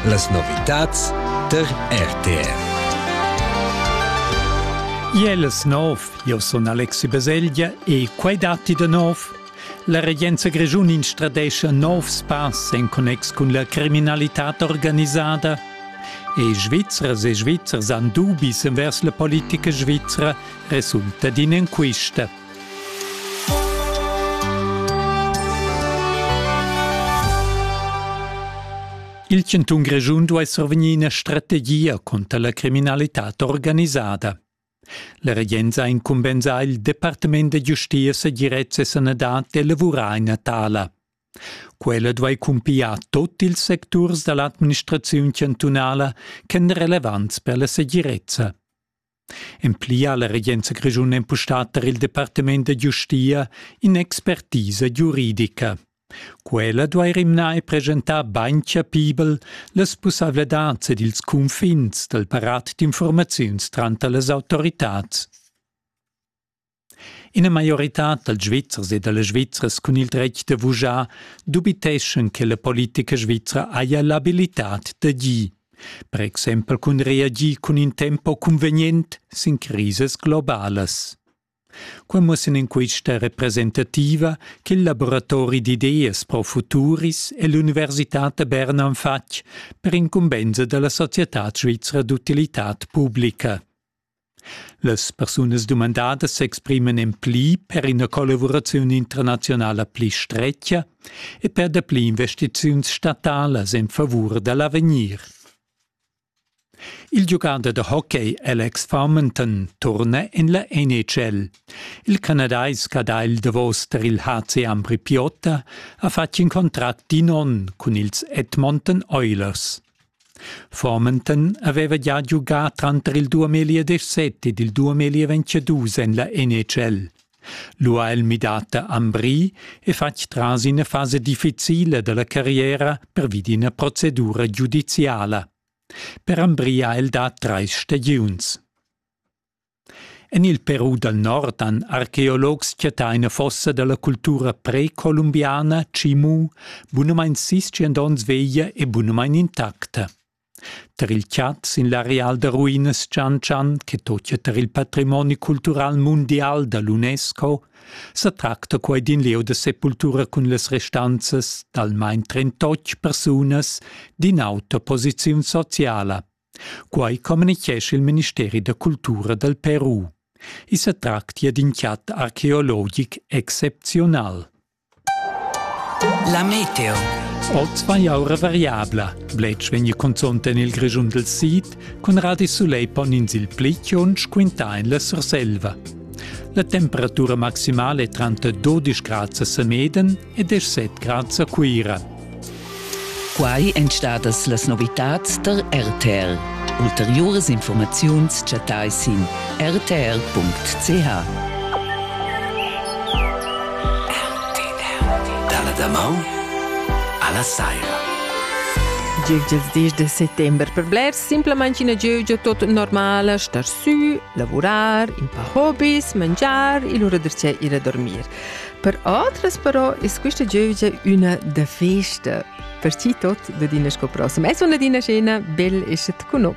Las novitads der RTR. Iel es nov, io sun Alexi Baselgia e quai datti da nov? La regenza grischun instradescha novs pass en connex cun la criminalità organisada. E Svizzers e Svizzers han dubis envers la politica svizra resulta d'in enquista. Il chantun Grischun duai survegnir ina strategia conter la criminalitad organisada. La regenza ha incumbensà il Departament da giustia, segirezza e sanadad d'elavurar ina tala. Quella duai cumpiar tut ils secturs da l'administraziun chantunala ch'èn relevants per la segirezza. En pli ha la regenza grischuna empustà tar il departament da giustia in'expertisa giuridica. Quella duai rimnar e presentar bain chapibel las pussaivladads ed ils cunfins dal parat d'infurmaziuns tranter las autoritads. Ina maioritad dals Svizzers e da las Svizzras cun il dretg da vujar dubiteschan che la politica svizra haja l'abilitad d'agir, per exempel cun reagir cun in tempo cunvegnent sin crisas globalas. Quai mussan in quista representativa ch'il laboratori d'ideas pro futuris e l'Università da Berna han fatg per incumbensa da la società svizra d'utilità publica. Las persunas dumandadas s'expriman en pli per ina collavuraziun internaziunala pli stretga e per dapli investiziuns statalas en favur da l'avegnir. Il giugader da hockey Alex Farmington turna en la NHL. Il canadais che ha il davos tar il HC Ambri Piotta ha fatg in contract d'in onn cun ils Edmonton Oilers. Formenton haveva gia giugà tranter il duamilli ed set ed il duamilli e ventschedus en la NHL. Lu ha el midà da Ambri e fatg tras ina fasa difficila dalla carriera pervi d'ina procedura giudiziala. Per Ambri ha el dà treis stagiuns. En il Peru dal nord han archeologs chattà ina fossa da la cultura precolumbiana Chimu, bunamain sischient onns veglia e bunamain intacta. Tar il chat sin l'areal da ruinas Chan Chan, che totia tar il patrimoni cultural mundial da l'UNESCO, sa tracta quai d'in lieu da sepultura cun las restanzas d'almain trentotg persunas d'ina auta posiziun sociala. Quai communitgescha il ministeri da cultura dal Peru. I sa tractia d'in chat archeologic excepziunal. La meteo. Oz vai aura variabla. Bletsch vegn consont en il Grischun del Sid, cun radi soleil pon ins il pli chiunsch quintà en la Surselva. La temperatura maximale è tranter 12 grad a Semeden ed es set grads a Cuira. Quai èn stadas las novitads tar RTL. Ulteriuras informaziuns chattai sin rtr.ch. Dalla damaun alla saira. Gievgia il dis de settembre per blers simplamain ina gievgia tot normala, star sü, lavurar, in paar hobbies, mangiar e lura dir ir a dormir. Per atras però es quista giövgia üna da festa, per chi tot da dina scopra. Ma es una dina scena bel e schet con no.